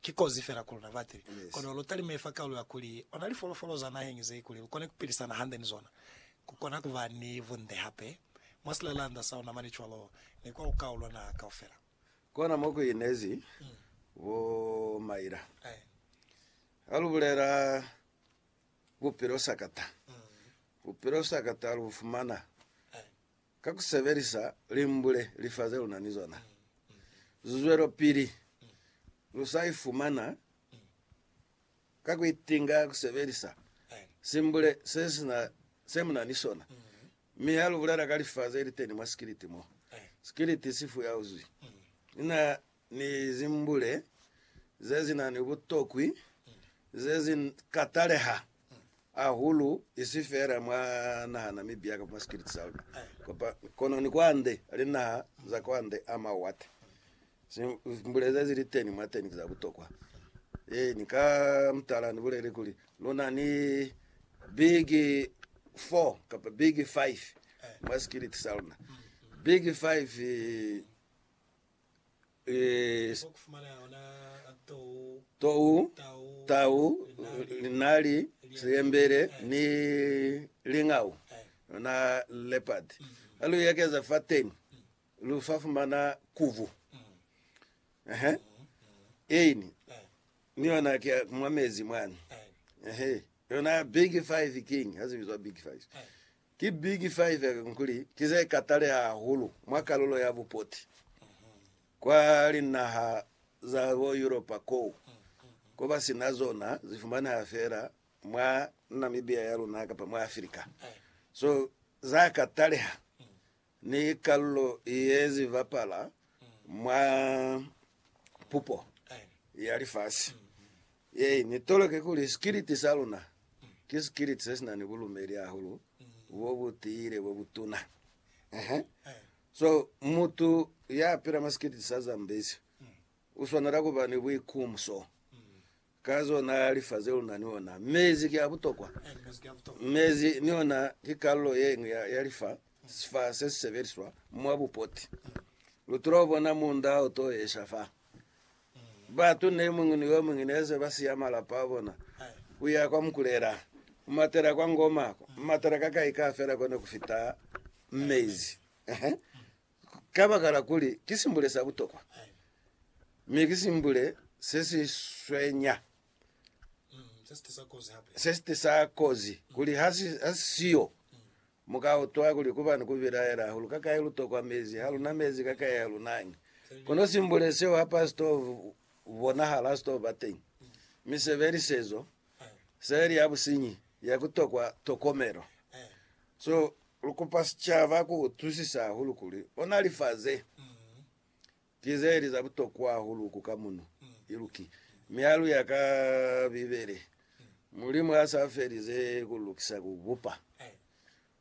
Ki kozi fela ku luna batili, kono lu talime fa kaulo ya kuli ona lifolofolo za naheñi ze kuli lu kone ku pilisana hande ni zona. Ku kona ku ba ni bunde hape mwa silalanda sa luna mane cwalo ni kwa ku kaulwa naha kaufela. Kona mo ku inezi bo maila ha lu bulela bupilo sakata, bupilo sakata lu bu fumana. Ka ku sebelisa limbule lifa ze lu na ni zona, lu zwelopili lu sa ifumana ka ku itinga ku sebelisa simbule se si na se mu na ni sona. Mi ha lu bulela ka lifa ze li teni mwa sikiliti mo, sikiliti si fuyauzwi. Ni na ni zimbule ze si na ni butokwi ze si ka taleha hahulu, isi feela mwa naha na Mibia kamba mwa sikiliti sa luna, kono ni kwande linaha za kwande a mawate. Zimbule ze si li teni mwateni ki za butokwa. Ee, ni ka mutala ni bulele kuli, lu na ni big four kamba big five mwa sikiliti sa luna. Big five. tou, tau, linali, siyembele ni lingau, yona leopard. Ha lu ekeza fateni lu fa fumana kuvu. Ehe. Eini ni yona ke mwa mezi mwani. Ehe. Yona big five king, ha zibizwa big five. Ki big five kakuli ki ze kataleha hahulu mwa kalulo ya bupoti kwa linaha za bo Yuropa koo, ko ba si na zona, zi fumaneha fela mwa Namibia ya luna kapa mwa Afrika. So za kataleha Ni kalulo ye zi bapala mwa pupo ya lifasi ye ni toloke kuli sikiliti sa luna ki sikiliti se si na ni bulumeli hahulu bo bu tiile bo bu tuna. Ehe. So, mutu ya pila mwa sikiliti sa Zambezi u swanela ku ba ni buikumso Ka zona lifa ze luna ni ona. Mezi ki a butokwa. Mezi ni ona ki kalulo ye ñwi ya, ya lifa, sifa se si sebeliswa mwa bupoti. Lu tula bona munda o to esha fa. Batu ne muñwi ni yo muñwi ne se ba siya malapa a bona, ku ya kwa Mukulela, ku matela kwa Ngoma, ku matela ka kai ka fela ko ne ku fita mezi. Kabakala kuli ki simbule sa butokwa, mi ki simbule se si swenya, se si tisa kozi, kuli ha si siyo, mu ka utwa kuli ku ba ni ku bilaela hahulu, kakai lu tokwa mezi, ha lu na mezi, kakai ha lu nañi. Kono simbule seo ha pa si to bonahala, ha si to ba teñi. Mi sebelisezo seli ya businyi ya ku tokwa tokomelo. So, lu kupa sicaba ku utwisisa hahulu kuli ona lifa ze ki ze li za butokwa hahulu ku ka muno iluki. Mi ha lu ya ka Bibele, Mulimu ha sa felize ku lukisa ku bupa,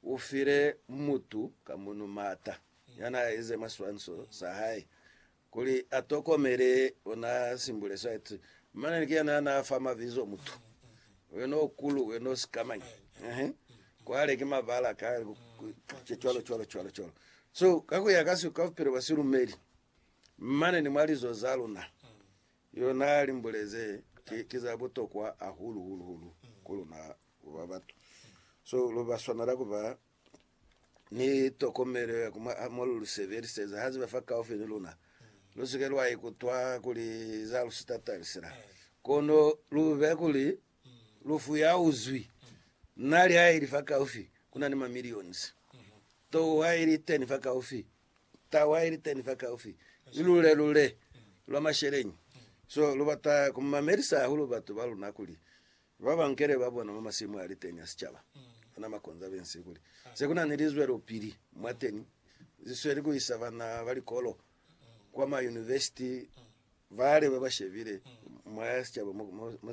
u file mutu ka muno maata ya n'a ize maswanso sa hae Kuli a tokomele, o na simbule site, mane ni kuyena ya na fa mabizo mutu. Wena o kulu, wena o sikamañi. Ehe. Kwale ki mabala ka, cwalo, cwalo, cwalo, cwalo. So, ka kuya ka siko, ka bupilo bwa silumeli, mane ni mwa lizo za luna, yo na limbule ze ki, ki za butokwa hahulu, hulu, hulu ku luna ku ba batu. So, lu ba swanela ku ba ni tokomelo ya ku mu a mo lu lu sebeliseza ha ziba fakaufi ni luna. Lu si ke lwa ikutwa kuli za lu si tatalisi na, kono lu be kuli lu fuyauzwi. Na li ha ili fakaufi, ku na ni mamillions. To ha ili teni fakaufi, tau ha ili teni fakaufi, ni lule-lule lwa masheleñi. So lu bata ku mamelisa hahulu batu ba luna kuli Ba ba nkele ba bona mwa masimu a li teñi a sicaba ba na makonzo a bensi kuli se ku na ni lizwelopili mwateni ze sweli ku isa bana ba likolo kwa mayunivesiti bale ba ba shebile mwa sicaba mo se